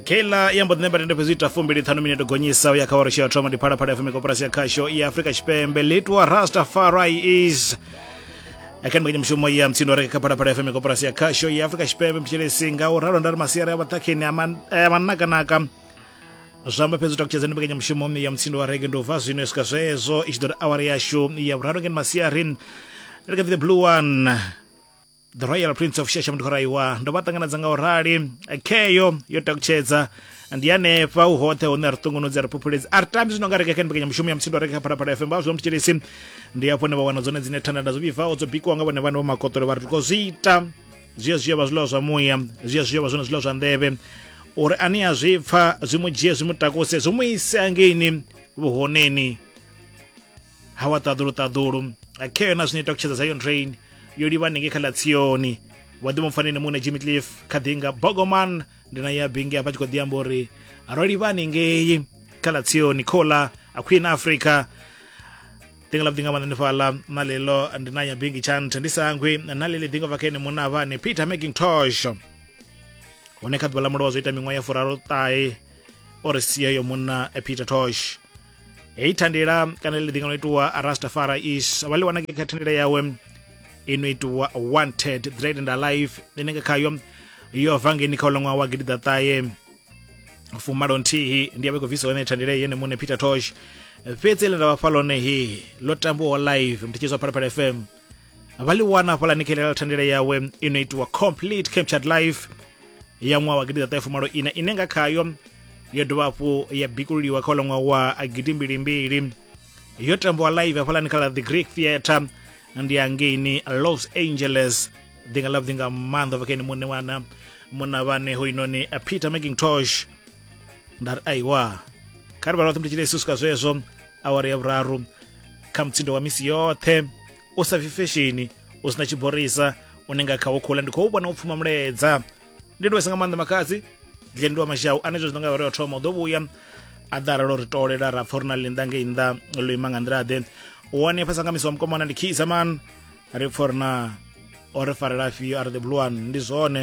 keila ya mbo ḓi ṋemba tende fhedzi ita fumbili ṱhanu minete gonyisa u ya kha wari tshi ya thoma ndi phalaphala fm koporasi ya khasho ya afrika tshipembe litwa rastafari is akani kwenye mushumo ya mtsindo reke kha phalaphala fm koporasi ya khasho ya afrika tshipembe mtshelesi nga u ralo ndari masiari a vhaṱhakheni a man- a manakanaka zwamba fhedzi takutshedza ndi mbekanyamushumo mme ya mutsindo wa rege ndi u bva zwino swika zwezo i tshi ḓo ri awari yashu ya vhuraru ngeni masiari reke the blue one the royal prince of shasha mudhoraiwa ndo vha ṱanganedza nga u rali kheyo yo takutshedza ndi hanefha u hoṱhe hune ri ṱungunudzi ri phuphuledzi a ri tambi zwino nga reka kha mbekanyamushumo ya muthindo reka kha phalaphala fm vha zwi mutshilisi ndi hafho ne vha wana dzone dzine thanda nda zwo vhibvaho dzo bikiwa nga vhone vhane vho makotolo vha ri tiko zwi ita zwiya zwiya vha zwiḽiwa zwa muya zwiya zwiya vha zwone zwiḽiwa zwa nḓevhe uri ani a zwi pfa zwi mu dzhie zwi mu takuse zwi mu ise angeini vhuhoneni ha wa ṱaḓulu ṱaḓulu khe yona zwino ita kutshedza zion train yo livha hanengei kha ḽa tsioni wa ḓi mupfaneni muṋe jimmy cliff kha ḓi nga bogoman ndi na ya bingi hafha tshi khou ḓi amba uri ro livha hanengei kha ḽa tsioni khola a queen africa dinga la dinga manani fala na lelo ndi na ya bingi chant ndi sangwe na lele dinga vakene muna vane peter making tosh hone kha ḓuvha ḽa mulowa zwo ita miṅwaha ya furaro ṱahe o ri sia yo munna eh, peter tosh heyi thandela kana ḽi ḓinga no itiwa rastafara is vha ḽi wana kha thandela yawe ino itiwa wanted dread and alive ine nga khayo yo bva ngeni kha uḽa wa gidi ḓaṱahe fumalo nthihi ndi yavha i khou bvisa hone thandele yene muṋe peter tosh fhedzi ḽe nda vha fha ḽone he ḽo tambiwaho live mthetshedzo phalaphala fm vha ḽi wana hafhaḽa ni khelela thandele yawe i no itiwa complete captured life ya ṅwaha wa gidiḓaṱahe fumalo ina ine nga khayo yo dovha hafhu ya bikululiwa kha uḽa ṅwaha wa gidi mbilimbili yo tambiwa live hafhaḽani kha ḽa the greek theatre ndi angeini los angeles ḓi nga ḽavhuḓi nga maanḓa bva kha ene muṋe wana munna vhane hoinoni peter macintosh nda ri aiwa kha ri vha roṱhe mutshile yesu swika zwezwo awara ya vhuraru kha mutsindo wa misi yoṱhe u sa bvi fesheni u sina tshiborisa une nga khawo khula ndi khou vhona u pfuma muledza ndi ndivesa nga maanḓa makhadzi dlendi wa mashau ane zwe zwi nga vhare thoma u ḓo vhuya a ḓa aralo ri tolela ra pfa uri na linda ngei nnḓa lo ima nga nḓila ḓe one fhasa nga misi wa mukomana ndi khisa man ri pfa uri na o ri farela afhio are the blue one ndi zwone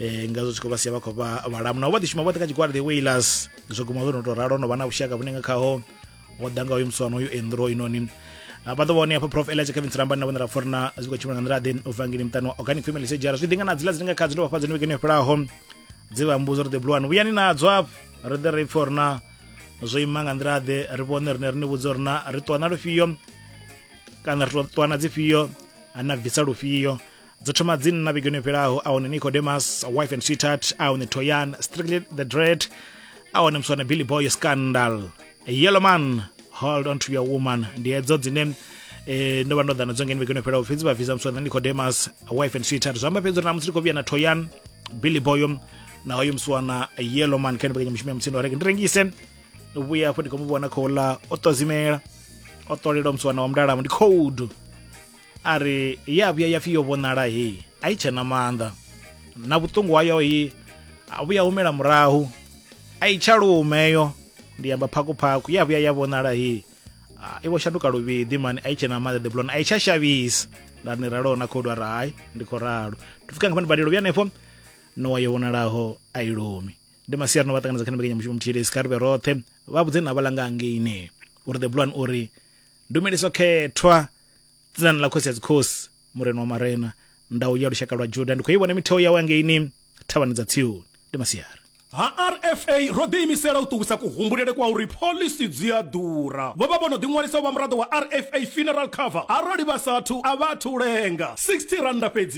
eh nga zwo tshi khou vha sia vha khou vha vhalamu navho vha ḓi shuma vhoṱhe kha tshigwada the wailers zwo guma zwo no tou ralo no vha na vhushaka vhune nga khaho ho ḓa nga uyu muswana uyu endro inoni vha ḓo vhone hafha prof elija kevin sirambani na vhone ra fori na zwi khou tshimbila nga nḓila ḓe u bva ngini muṱani wa organic family sejara zwi ḓi nga na dzila dzine nga kha dzine vha fha dzone vhekeni yo fhelaho dzi vha mbudzo ri ḓe buluwani vhuyani nadzo afho ri ḓe ri pfa uri na zwo ima nga nḓila ḓe ri vhone rine ri ni vhudze uri na ri ṱuwa na lufhio kana ri ṱuwa na dzifhio ana bvisa lufhio dzo thoma dzi nna vhigoni yo fhelaho a hone nicodemus wife and sweetheart a hone toyan strictly the dread a hone muswana billy boy scandal yellow man hold on to your woman ndi hedzo dzine eh, ndo vha ndo ḓana dzo ngeni vhigoni yo fhelaho fhedzi vha vhidza muswana nicodemus wife and sweetheart zwi amba fhedzi uri namusi ndi khou vhuya na toyan billy boyo na hoyo muswana yellow man kha ndibekanya mushumo ya mutsindo wa reke ndi rengise vhuya afho ndi khou mu vhona khou ḽa o ṱozimela o ṱolela muswana wa mudalamo ndi cold a ri ye a vhuya ya pfi yo vhonala heyi a i tshena maanḓa na vhuṱungu hayo hi a vhuya humela murahu a i tsha lumeyo ndi amba phakuphaku ya vhuya ya vhonala heyi i vho shanduka luvhiḓi mani a i tshena maanḓa the blon a i tsha shavhisa nda ni raloho na khodu a ri hai ndi khou ralo ndi pfuka nga fhani badelo vhuya hanefho nowa yo vhonalaho a i lumi ndi masiari no vha ṱanganedza kha ni mbekanyamushumo muthihi lesi kha ri vhe roṱhe vha vhudze na vhalanga angeine uri the blon uri ndumeliso khethwa dzinani ḽa khosi ya dzikhosi murena wa marena ndau ya lushaka lwa juda ndi khou i vhona mitheo yawe angeini thavhani dza tsioni ndi masiari ha rfa ro ḓiimisela u ṱuwisa kuhumbulele kwa uri phoḽisi dzi a ḓura. Vho vha vho no ḓiṅwalisa u vha muraḓo wa rfa Funeral Cover arali vha sa athu a vha athu u lenga. 60 rannda fhedzi.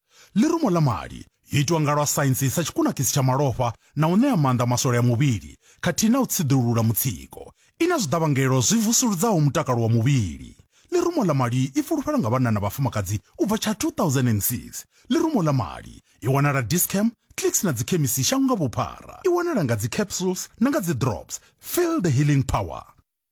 Ḽirumo ḽa mali yo itwa nga lwa saintsi sa tshikunakisi tsha malofha na u ṋea maanḓa maswole a muvhili khathihi na u tsiḓulula mutsiko. I na zwiḓavhangelo zwi vusuludzaho mutakalo wa muvhili. Ḽirumo ḽa mali i fulufhelwa nga vhanna na vhafumakadzi u bva tsha 2006. Ḽirumo ḽa mali i wanala Dis-Chem, Clicks na dzikhemisi shango nga vhuphara. I wanala nga dzi capsules na nga dzi drops. Feel the healing power.